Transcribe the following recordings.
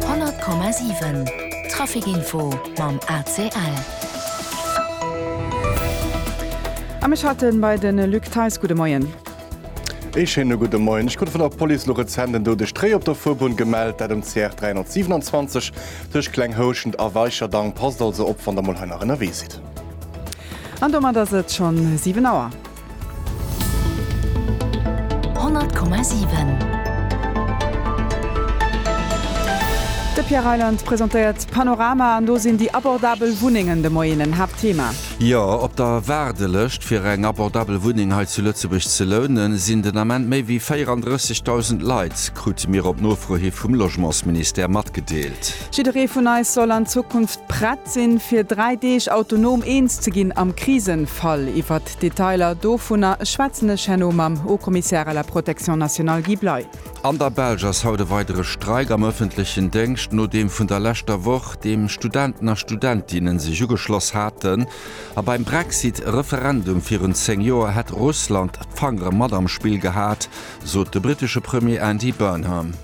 100,7 Trafic Info mam ACL. A mech haten bei de Luc Theis. Gudde Moien. Ee schéine gudde Moien. Ech krut vun der Police elo rezent en doudegt Réi op der Fuerbunn gemellt, dat um CR 327 tëscht Kleng Houschent a Weicherdang. Passt also op, wann der mol hei nach ënnerwee sidd. An domat ass et schonn 7 Auer. De Pierre Reyland presentéiert d'Panorama an do sinn déi abordabel Wunnengen de Moien en Haaptthema. Jo, op der Waardelëscht fir eng abordabel Wunneng hei zu Lëtzebuerg ze lounen, sinn den Ament méi wéi 34.000 Leit, krute mir op Nofro hi vum Logementsministère matgedeelt. Jidderee vun eis soll an Zukunft prett sinn, fir dräi Deeg autonom eens ze ginn am Krisenfall. Iwwert d'Detailer dovunner schwätzen ech herno mam Haut-Commissaire à la protection nationale Guy Bley. An der Belsch ass haut e weidere Streik am ëffentlechen Déngscht no deem vun der leschter Woch, deem Studenten a Studentinne sech ugeschloss haten. A beim Brexit Referendum virun 10 Joer hätt Russland d'Fangere mat am Spill gehat, sot de brittesche Premier Andy Burnham.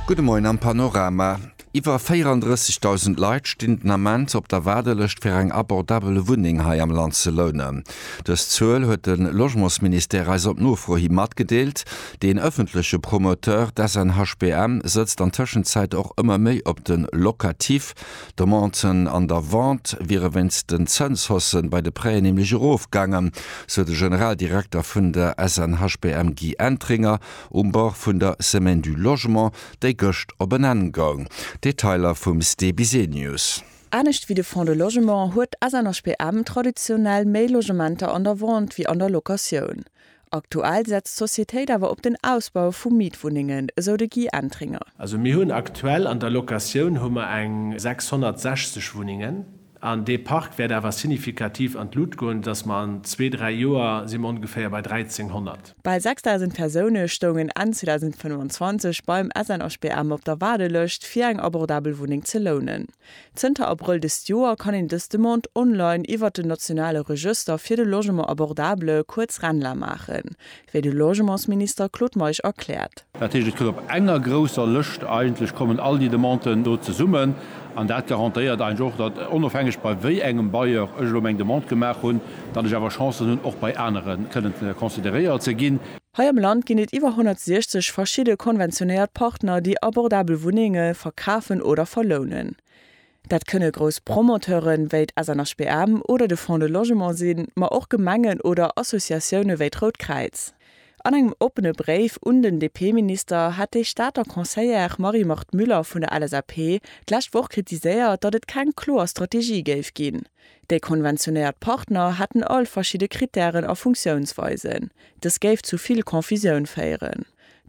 Gudde Moien am Panorama. Iwwer 34.000 Leit stinn den Ament op der Waardelëscht fir eng abordabel Wunneng hei am Land ze lounen. Dës Zuel huet de Logementsministère eis op Nofro hi matgedeelt. Deen ëffentleche Promoteur, d'SNHBM, sëtzt an Tëschenzäit och ëmmer méi op de Locatif, D'Demanten an der Vente wiere wéinst den Zënshaussen bei de Prêten nämlech erofgaangen, sou de Generaldirekter vun der SNHBM Guy Entringer um Bord vun der Semaine du Logement, déi gëscht op en Enn goung. Detailer vum Ste Bisenius. Anescht wéi de Fonds de Logement huet d'SNHBM traditionell méi Logementer an der Vente wéi an der Locatioun. Aktuell setzt d'Societéit awer op den Ausbau vu Mietwunnengen, esou de Guy Entringer. Also mir hunn aktuell an der Locatioun hu mer eng 660 Wunnengen an dee Park wäert awer signifikativ an d'Lut goen, esoudatt mer an zwee, dräi Joer si mer ongeféier bei 1.300. Bal 6.000 Persoune stoungen Enn 2025 beim SNHBM op der Waardelëscht, fir eng abordabel Wunneng ze lounen. Zënter Abrëll dëst Joer kann een dës Demande online iwwert den nationale Regëster fir de Logement abordable, kuerz RENLA, maachen, wéi de Logementsminister Claude Meisch erkläert. Dat heescht, et gëtt op enger grousser Lëscht, eigentlech kommen all déi Demanden do zesummen, an dat garantéiert eigentlech och, datt, onofhängeg bei wéi engem Bailleur ech elo meng Demande gemaach hunn, datt ech awer Chancen hunn, och bei anere kënnen consideréiert ze ginn. Hei am Land ginn et iwwer 160 verschidde konventionéiert Partner, déi abordabel Wunnenge verkafen oder verlounen. Dat kënne grouss Promoteure wéi d'SNHBM oder de Fonds de Logement sinn, ma och Gemengen oder Associatioune wéi d'Rout Kräiz. An engem oppene Bréif un den DP-Minister hat déi Stater Conseillère Marie-Marthe Müller vun der LSAP d'lescht Woch kritiséiert, datt et keng kloer Strategie géif ginn. Déi konventionéiert Partner hätten all verschidde Krittären a Funktiounsweisen. Dës géif zu vill Confusioun féieren.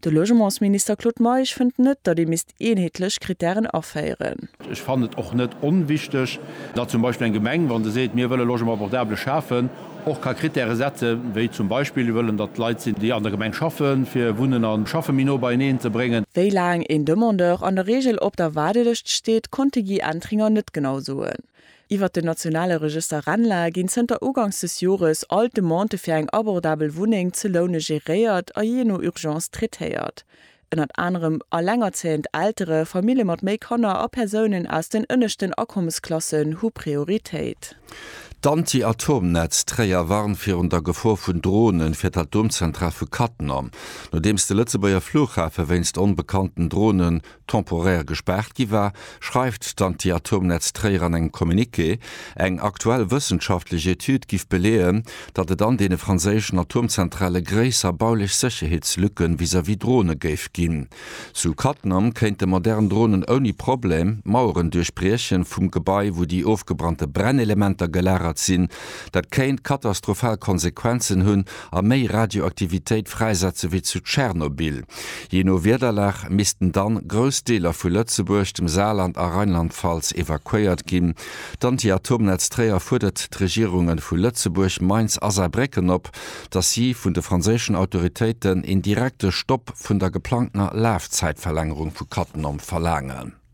De Logementsminister Claude Meisch fënnt net, datt ee misst eenheetlech Krittären aféieren. Ech fannen et och net onwichteg, datt zum Beispill eng Gemeng, wa se seet, mir wëlle Logement abordable schafen, och ka Krittäre setze wéi zum Beispill, mir wëllen, datt Leit sinn, déi an der Gemeng schaffen, fir Wunnen a Schaffe méi no beieneen ze bréngen. Wéi laang een Demandeur an der Reegel op der Waardelëscht steet, konnt de Guy Entringer net genau soen. Iwwert den nationale Regëster RENLA ginn zënter Ugangs des Jores all d'Demandë fir eng abordabel Wunneng ze loune geréiert a jee no Urgence traitéiert. Ënnert anerem allengerzéiend Eltere, Famille mat méi Kanner a Persounen aus den ënneschten Akommesklassen hu Prioritéit. D'Anti-Atom-Netz Tréier warnt virun der Gefor vun Drone fir d'Atomzentral vu Cattenom, nodeems de Lëtzebuerger Flughafe wéinst onbekannten Drone temporär gespaart gi war, schreift d'Antiatomnetz Tréier an engem Communiqué. Eng aktuell wëssenschaftlech Etüd giff beleeën, datt et an deene franséischen Atomzentrale gréisser baulech Sécherheetslücke vis-à-vis Drone géif ginn. Zu Cattenom kéinte modern Dronen ouni Problem d'Maueren duerchbriechen vum Gebai, wou déi ofgebrannte Brennelementer gelagert sinn. Dat kéint katastrophal Konsequenzen hunn a méi Radioaktivitéit fräisetze wéi zu Tschernobyl. Jee no Wiederlag missten dann grouss Deeler vu Lëtzebuerg, dem Saarland a Rheinland-Pfalz evakuéiert ginn. D'Anti-Atomnetz Tréier fuerdert d'Regierungen vu Lëtzebuerg, Mainz a Saarbrécken op, dass si vun de franséischen Autoritéiten een direkte Stopp vun der geplangtener Lafzäitverlängerung vu Cattenom verlaangen.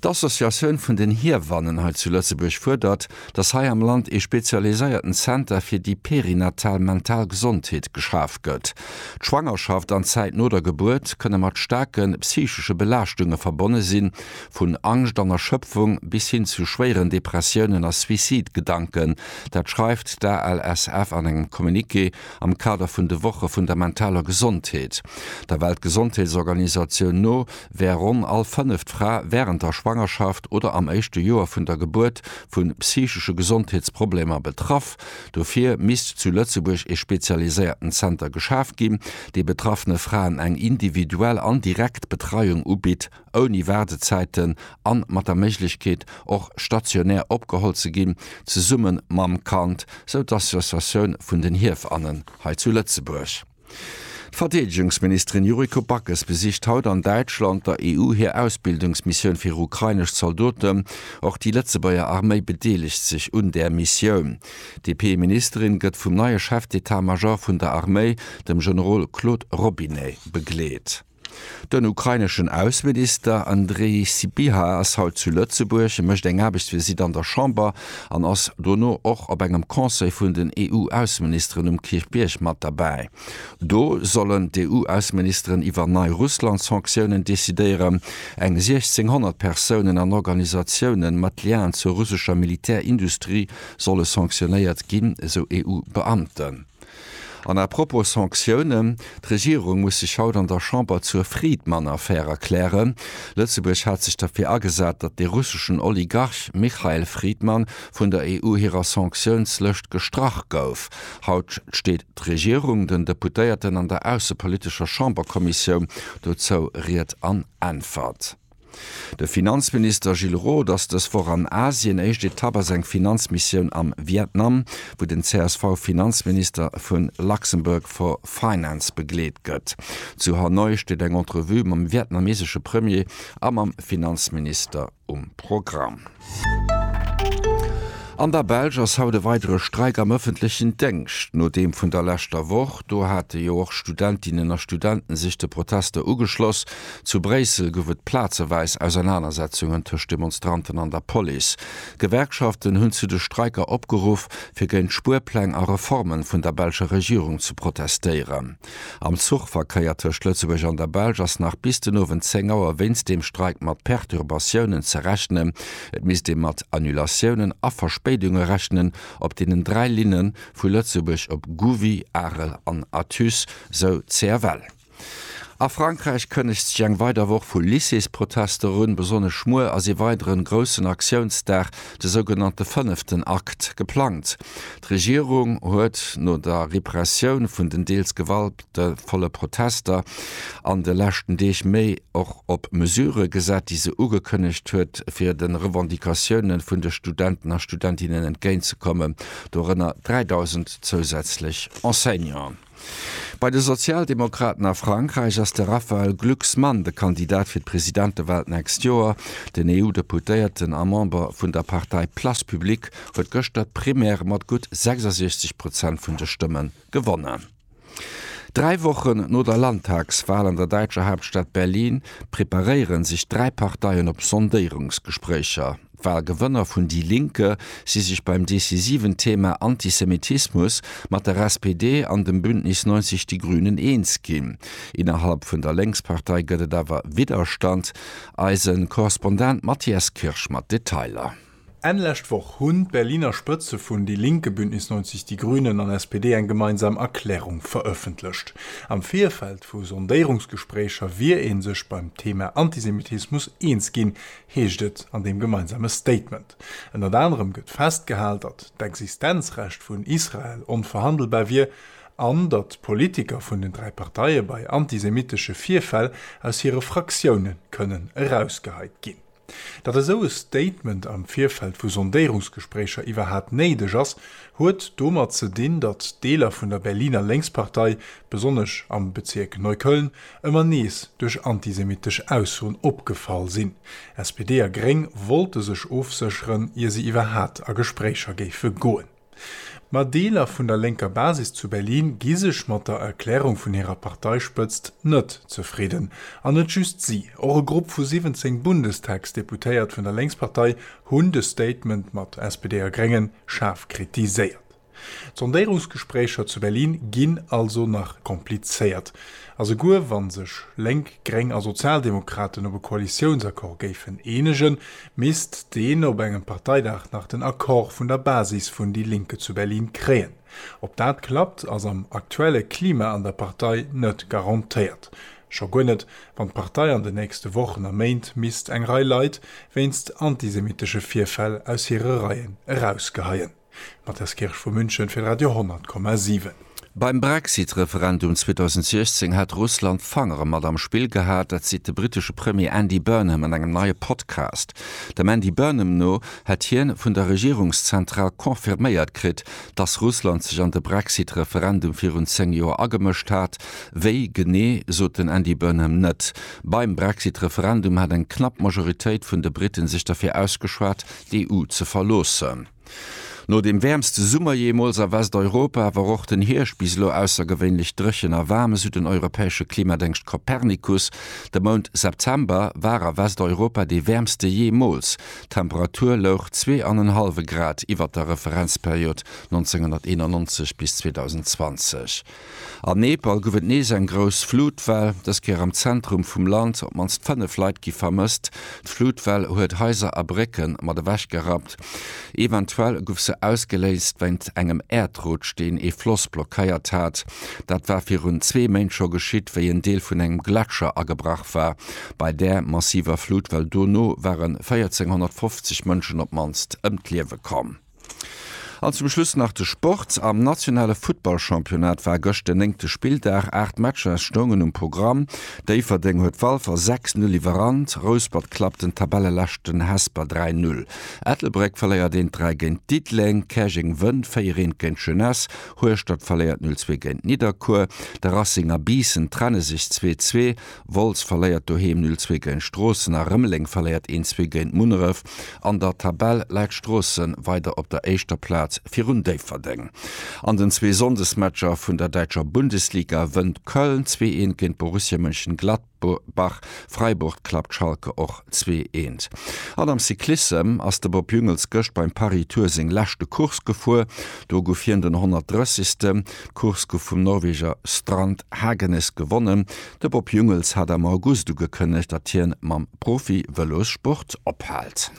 D'Associatioun vun den Hiewannen hei zu Lëtzebuerg fuerdert, datt hei am Land ee spezialiséierten Zenter fir déi perinatal mental Gesondheet geschaf gëtt. D'Schwangerschaft an d'Zäit no der Gebuert kënne mat staarke psychesche Belaaschtunge verbonne sinn, vun Angscht an Erschëpfung bis hin zu schwéieren Depressiounen a Suicide-Gedanken. Dat schreift d'ALSF an engem Communiqué am Kader vun de Woche vun der mentaler Gesondheet. Der Weltgesondheetsorganisatioun no wär ronn all fënneft Fra wärend der Schwangerschaft oder am éischte Joer vun der Gebuert vu psychesche Gesondheetsproblemer betraff. Dofir misst zu Lëtzebuerg ee spezialiséierten Zenter geschaf ginn, dee betraffene Fraen eng individuell an direkt Betreiung ubitt, ouni Waardezäiten an mat der Méiglechkeet, och stationär opgeholl ze ginn, zesumme mam Kand, sou d'Associatioun vun den Hiefannen hei zu Lëtzebuerg. D'Verdeedegungsministerin Yuriko Backes besicht haut an Däitschland der EU hir Ausbildungsmissioun fir ukrainesch Zaldoten. Och déi Lëtzebuerger Arméi bedeelegt sech un där Missioun. D'DP-Ministerin gëtt vum neie Chef d'Etat-Major vun der Arméi, dem Generol Claude Robinet, begleet. Den ukraineschen Ausseminister Andrii Sybiha ass haut zu Lëtzebuerg. E mécht eng Aarbechtsvisitt an der Chamber an ass dono och op engem Conseil vun den EU-Ausseministeren um Kierchbierg mat derbäi. Do sollen d'EU-Ausseministeren iwwer nei Russland-Sanktiounen decidéieren. Eng 1.600 Persounen an Organisatiounen mat Liaen zur russescher Militärindustrie solle sanktionéiert ginn, esou EU-Beamten. An à propos Sanctiounen, D'Regierung muss sech haut an der Chamber zur Friedmann-Affär erklären. Lëtzebuerg hat sech derfir agesat, datt de russeschen Oligarch Michael Friedmann vun der EU hirer Sanktiounslëscht gestrach gouf. Haut steet d'Regierung den Deputéierten an der aussepolitescher Chamberkommissioun dozou Ried an Äntwert. De Finanzminister Gilles Roth ass dës Woch an Asien. Éischt Etapp ass eng Finanzmissioun am Vietnam, wou den CSV-Finanzminister vu Luxembourg for Finance begleet gëtt. Zu Hanoi steet eng Entrevue mam vietnamesesche Premier a mam Finanzminister um Programm. An der Belsch ass haut e weidere Streik am ëffentlechen Déngscht no deem vun der leschter Woch. Do hate jo och Studentinnen a Studenten sech de Protester ugeschloss. Zu Bréissel gouf et plazeweis Ausernanersetzungen tëscht Demonstranten an der Police. D'Gewerkschaften hunn zu de Streiker opgeruff, fir géint Spuerpläng a Reformen vun der belscher Regierung ze protestéieren. Am Zuchverkéier tëscht Lëtzebuerg an der Belsch ass nach bis den Owend 10 Auer wéinst deem Streik mat Perturbatiounen ze rechnen. Et misst ee mat Annulatiounen a Verspéidunge rechnen op deenen dräi Linne vu Lëtzebuerg op Gouvy, Arel an Athus, sou d'CFL. A Frankräich kënnegt sech eng weider Woch vu Lycéesprotester un. Besonnesch muer ass ee weideren groussen Aktiounsdag de sougenannte fënneften Akt, geplangt. D'Regierung huet no der Repressioun vun den deels gewaltvolle Protester an de leschten Deeg méi och op Mesurë gesat, déi se ugekënnegt huet, fir de Revendicatioune vun de Studenten a Studentinnen entgéintzekommen, dorënner 3.000 zousätzlech Enseignanten. Bei de Sozialdemokraten a Frankräich ass de Raphaël Glucksmann de Kandidat fir d'Presidentewal d'nächst Joer. Den EU-Deputéierten a Member vun der Partei Place Publique huet gëschter d'Primaire mat gutt 66 Prozent vun de Stëmme gewonnen. Dräi Wochen no der Landtagswal an der däitscher Haaptstad Berlin preparéiere sech dräi Parteien op Sondéierungsgespréicher. D'Walgewënner vun Die Linke si sech beim decisiven Thema Antisemitismus mat der SPD an dem Bündnis 90 Die Grünen eens ginn. Innerhalb vun der Lénkspartei gëtt et awer Widderstand. Eise Korrespondent Matthias Kirsch mat Detailer. Enn lescht Woch hunn d'Berliner Spëtze vun Die Linke, Bündnis 90 Die Grünen an SPD eng gemeinsam Erklärung verëffentlecht. Am Virfeld vu Sondéierungsgespréicher wier ee sech beim Thema Antisemitismus eens ginn, heescht et an deem gemeinsame Statement. Ënnert anerem gëtt festgehal, datt d'Existenzrecht vun Israel onverhandelbar wier an datt d'Politiker vun den dräi Parteie bei antisemitesche Virfäll aus hire Fraktioune kënnen erausgeheit ginn. Datt esou e Statement am Virfeld vu Sondéierungsgespréicher iwwerhat néideg ass, huet domat ze dinn, datt Deeler vun der Berliner Lénkspartei, besonnesch am Bezierk Neukölln, ëmmer nees duerch antisemittesch Aussoen opgefall sinn. SPD a Gréng wollte sech ofsécheren, ier se iwwerhat a Gespréicher géife goen. Ma Deeler vun der lénker Basis zu Berlin gi sech mat der Erklärung vun hirer Parteispëtzt net zefridden. An net just si, och e Grupp vu 17 Bundestagsdeputéiert vun der Lénkspartei hunn de Statement mat SPD a Gréngen schaarf kritiséiert. D'Sondéirungsgespréicher zu Berlin ginn also nach komplizéiert. A souguer wa sech Lénk, Gréng a Sozialdemokraten op e Koalitiounsaccord géifen eenegen, misst deen op engem Parteidag nach den Accord vun der Basis vun déi Linke zu Berlin kréien. Ob dat klappt, ass am aktuelle Klima an der Partei net garantéiert. Scho guer net, wann d'Partei an den nächste Wochen a Méint misst eng Rei Leit wéinst antisemitesche Virfäll aus hire Reien erausgeheien. D'Matthias Kirsch vu München fir Radio 10,7. Beim Brexit-Referendum 2016 hat Russland d'Fangere mat am Spill gehat. Dat seet de brittesche Premier Andy Burnham an engem neie Podcast. Dem Andy Burnham no hätt hien vun der Regierungszentral confirméiert kritt, dass Russland sech an de Brexit-Referendum virun 10 Joer agemëscht hat. Wéi genee, sot den Andy Burnham net. Beim Brexit-Referendum hat eng knapp Majoritéit vun de Britten sech derfir ausgeschwat, d'EU ze verloossen. No dem wäermste Summer jeemools a Westeuropa wor och den Hierscht bis elo aussergewéinlech dréchen a waarm, esou den europäesche Klimadéngscht Copernicus. De Mount September war a Westeuropa dee wäermste jeemools, d'Temperatur louch zwee an en hallwe Grad iwwert der Referenzperiod 1991 bis 2020. Am Nepal gouf et nees eng grouss Flutwell, dës Kéier am Zentrum vum Land. Op d'mannst 5 Leit gi vermësst. D'Flutwell huet Haiser a Brécke mat ewechgerappt. Eventuell gouf se ausgeléist wéint engem Äerdrutsch, deen ee Floss blockéiert hat. Dat war virun zwee Méint scho geschitt, wéi en Deel vun engem Gletscher agebrach war. Bei där massiver Flutwell dono ware 1.450 Mënschen op d'mannst ëm d'Liewe komm. An zum Schluss nach de Sport. Am nationale Futtballchampionnat war gëscht den néngte Spilldag. Aacht Matcher stoungen um Programm. Déifferdeng huet Walfer 6-0 iwwerrannt. Rouspert klappt den Tabelleleschten Hesper 3-0. Ettelbréck verléiert 1-3 géint Diddeleng. Käerjeng wënnt 4-1 géint Jeunesse. Hueschtert verléiert 0-2 géint Nidderkuer. De Racing a Biissen trenne sech 2-2. Wolz verléiert doheem 0 zwee géint Stroossen a Rëmeleng verléiert 1 zwee géint Munneref. An der Tabell läit Stroossen weider op der éischter Plaz virun Déifferdeng. An den zwee Sonndesmatcher vun der däitscher Bundesliga wënnt Köln zwee eent géint Borussia Mönchengladbach, Freiburg klappt Schalke och zwee eent. An am Cyclissem ass de Bob Jungels gëscht beim Paris-Tour seng leschte Course gefuer. Do guff hien den 130. D'Course gouf vum Norweger Strand Hagenes gewonnen. De Bob Jungels hat am August ugekënnegt, datt hien mam Profi-Vëlossport ophält.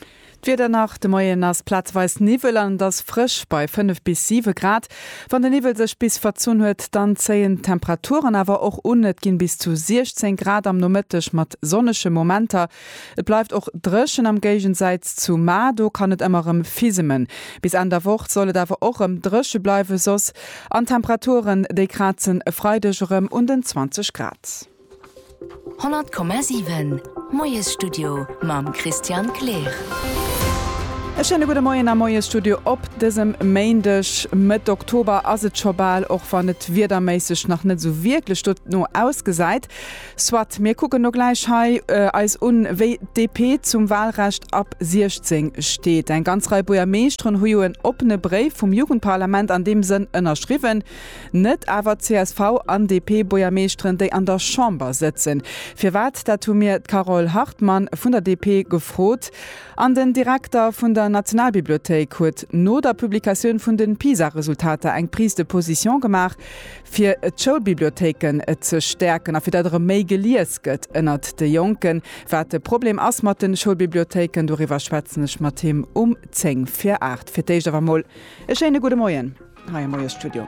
D'Wieder nach, De Moien ass plazeweis Niwwel an et ass frësch bei 5 bis 7 Grad. Wann de Niwwel sech bis verzunn huet, dann zéien d'Temperaturen awer och un, et ginn bis zu 16 Grad am Nomëtteg mat sonnege Momenter. Et bleift och dréchen, am Géigensäitz zu Mar, do kann et emmer rem fisemen. Bis Enn der Woch soll et awer och rem dréche bleiwe soss, an d'Temperaturen déi kraatzen e Freideg erem un den 20 Grad. 100,7 Moiesstudio mam Christian Kleer. E schéine gudde Moien am Moiesstudio op dësem Méindeg. Mëtt Oktober ass et scho bal, och wann et wiederméisseg nach net esou wierklech dono ausgesäit. Soit, mir kucken no gläich hei eis un, wéi d'DP zum Wahlrecht ab 16 steet. Eng ganz Rei Buergermeeschteren hu jo en oppene Bréif vum Jugendparlament an deem Sënn ënnerschriwwen. Net awer d'CSV an DP-Buergermeeschteren, déi an der Chamber sëtzen. Firwat, dat hu mir d'Carole Hartmann vun der DP gefrot. An den Direkter vun der Nationalbibliothéik huet no der Publikatioun vun de PISA-Resultater eng Prise de position gemaach, fir d'Schoulbibliothéiken ze stäerken a fir datt erëm méi gelies gëtt ënnert de Jonken. Wat de Problem ass mat de Schoulbibliothéiken, doriwwer schwätzen ech mat him um 10 vir 8. Fir d'éischt awer emol e schéine gudde Moien hei am Moiesstudio.